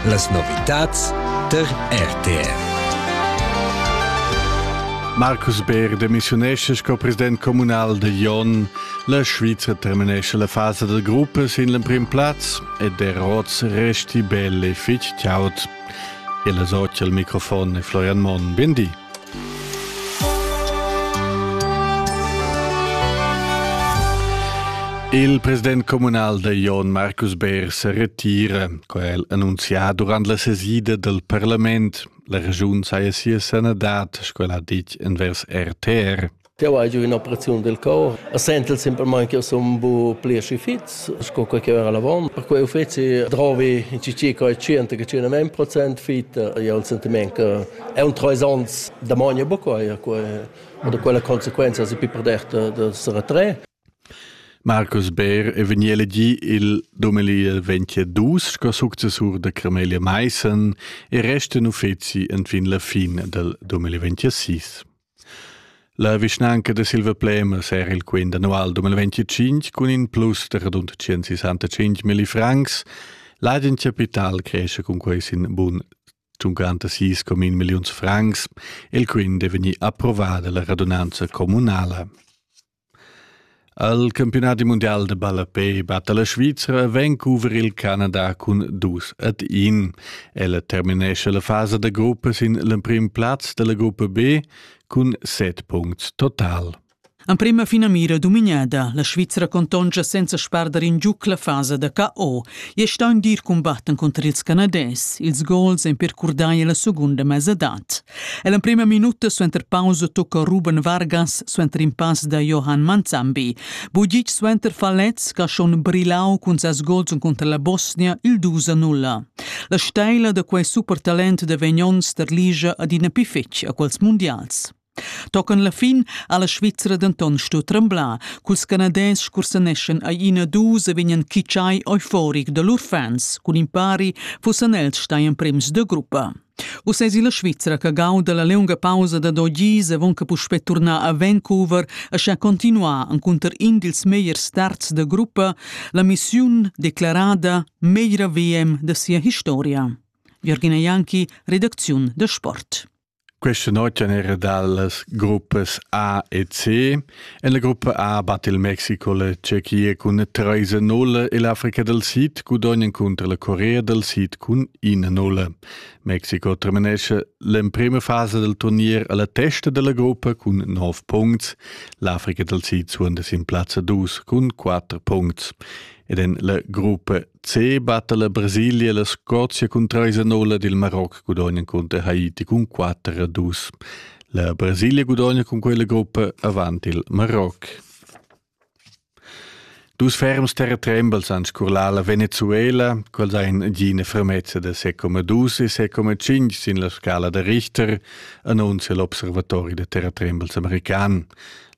Las novitads tar RTR. Marcus Beer demissiunesce sco president communal de Jon. La Svizra terminesce la fase del gruppe sin l'emprim plaz e der rots resti belle fich ciaut. E la socia al microfon è Florian Mon. Bendi. Il president communal da Jon Marcus Beer se retira, co el annunzià durant la sesida del parlament. La regiun saja sia sanadad, sco el ha dit envers RTR. Jau hai giu in'operaziun del cor e sentel semplamain che sun bu pli aschi fits sco quei che era l'avon. Per quei uffeci drovi in cici coi 100-100% fit. Io ho il sentiment che è un trois ans da mogna bucoi a quei oder quella consequenza si pi perderte de se retré. Marcus Beer è vegni elegì il 2022 sco successur da Cremelia Meissen e resta in uffeci en fin la fine del 2026. La vischnanca da Silvaplèmas era il quint annual 2025 cun in plus da radund 165 milli francs. L'agen capital cresce cun quei sin bun 56 comin milliuns francs. Il quint è vegnì approvada la radunanza communala. Al campiunadi mundial da ballapè batta la Svizra Vancouver il Canada cun dus ad in. Ella terminescha la fasa da gruppa sin l'emprim plaz dalla gruppa B cun set punts total. Emprema finamira dominada, la Svizra contonscha senza spardar in giuc la fasa da KO e sta in dir combatten contr ils Canadès. Ils gols en percurdai la segunda mesadat. E l'emprima minuta suenter pausa tocca Ruben Vargas suenter in pass da Johan Manzambi. Bugic suenter Falez che ha schon brillau cun ses gols cunter la Bosnia il 2 0. La steila da quei supertalent de Vegnon ligia adina più fetg a quels mondials. Tocan la fin ha la Svizzera denton stu tremblar, culs canadès cursaneschan ai ina dus e vegnan kitschai euforic da lur fans, cun impari fussan els stai emprems de gruppa. Uss es illa Svizra che gauda la liunga pausa da do gis avon che puspè turnar a Vancouver e sha continuar encunter in dils megliers starts da gruppa la missiun declarada meglra VM da sia historia. Jürgina Janki, redacziun da sport. Questa notte era dalle gruppe A e C En la gruppa A batte il Mexico la Tschechia cun treis nulle e l'Africa del Sid gudognan contro la Corea del Sid cun ina nulle. Mexico terminesce l'emprima fase del turnier alla testa della gruppa cun 9 punts, l'Africa del Sid suonda sin plazza 2 cun 4 punts. Ed en la gruppa C batte la Brasilia la Scozia cun 3 nulle ed il Marocco gudognan contro Haiti cun 4 2. La Brasilia gudogna cun quella gruppa avant il Maroc. Dus ferms terratrembels han scurlà la Venezuela, quels ein gina fermezza da 6,2 e 6,5 sin la scala da Richter, annuncia l'Observatori da terratrembels american.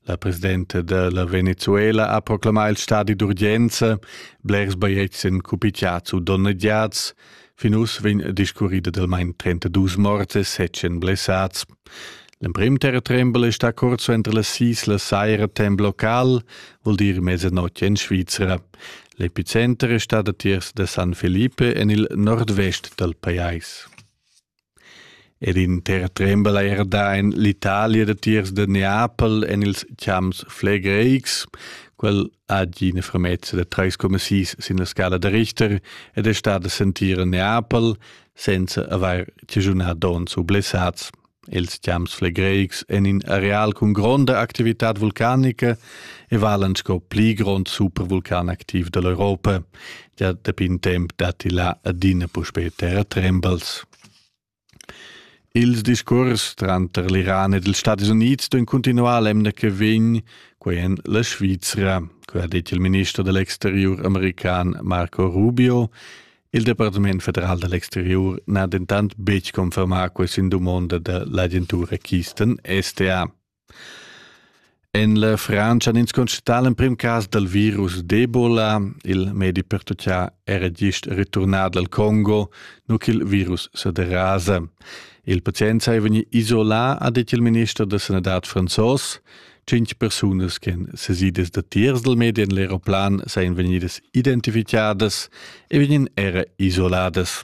La presidenta della Venezuela ha proclamà il stadi d'urgenza, blers baietzen cupiciats u donneggiats, Fin uss vegn discurrida dal main 32 morts e 7 blessats. L'emprim terratrembel è stà curt suenter las sis la saira temp local, vul dir mezzanotte in Svizzera. L'epicenter è stat datiers da San Felipe en il nordvest dal pajais. Ed inter trembel eir dà in l'Italia datiers da Neapel en ils champs flegreics. Quel ha gi ina fermezza da 3,6 sin la scala da Richter ed è stat a sentir a Neapel senza avair chaschunà donns u blessats. Els champs flegreics en in areal cun gronda activitad vulcanica e valan sco pli grond supervulcan activ da l'Europa. ja dapi in temp datti là adina puspè terratrembels. Ils discurs tranter l'Iran ed ils Stati Unids d'un continuar l'emna che vegn, quai en la Svizra, quai ha dit il minister dell'exterior american Marco Rubio. Il Departement federal dell'exterior n'ha dentant betg confermà questa dumonda dell'agentura Kisten STA. En la Frantscha han ins constatà l'emprim cas dal virus d'Ebola. Il medi pertutgà era gist returnà dal Congo, nu ch'il virus sa derasa. Il pazient sei vegnì isolà, ha detg il minister da sanadad franzos. Cinc persunas che han sesidas datiers dal medi en l'aeroplan sajan vegnidas identificadas e vegnan era isoladas.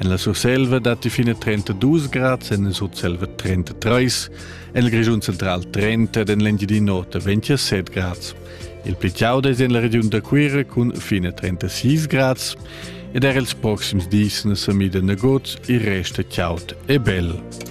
En la Surselva datti fina 32 grads, en la Sutselva 33, en il Grischun central 30 ed en l'Engiadina Nota 27 grads. Il pli chaud è en la regiun da Cuira cun fina 36 grads ed er ils proxims dis na sa mida nagut, il rest è chaud e bel.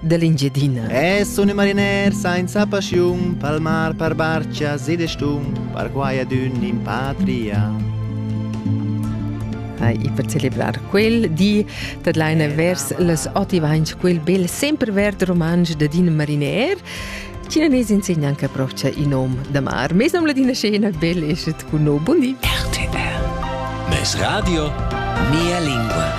dell'Engiadina. E sun i mariner sainza paschiun, palmar par barchas ed stun, par quai adün in patria. Ai, e per celebrar quel di tadlaina vers las otivains quel bel sempre verd romansch da Din Mariner, Cinanes insegna anche propcha in nom da mar. Mes nom ladina scena bel eschet con no. Buon di. RTR. Mes radio, mia lingua.